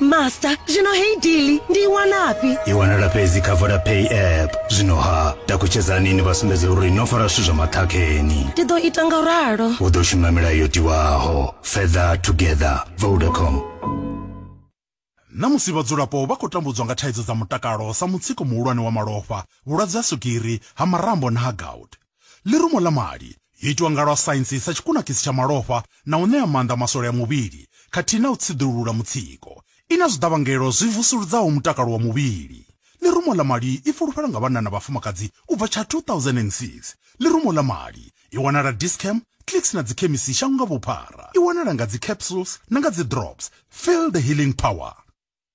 master zvino hei dili ndiiwanapi iwanala fhedzi kha vodapay app zwino ha takutshedzani ni vha sumbedze uri no fara zwithu zwa maṱhakheni ndi ḓo ita nga ralo u ḓo shuma milayo yo tiwaho further together vodacom na musi vhadzulapo vha khou tambudzwa nga thaidzo dza mutakalo sa mutsiko muhulwane wa malofha vhulwadze ha swigiri ha marambo na ha gout Ḽirumo ḽa mali yo itwa nga lwa saintsi sa tshikunakisi tsha malofha na u ṋea maanḓa maswole a muvhili khathihi na u tsiḓulula mutsiko. I na zwiḓavhangelo zwi vusuludzaho mutakalo wa muvhili. Ḽirumo ḽa mali i fulufhela nga vhanna na vhafumakadzi u bva tsha 2006. Ḽirumo ḽa mali i wanala Dis-Chem, Clicks na dzikhemisi shango nga vhuphara. I wanala nga dzi capsules na nga dzi drops. Feel the healing power.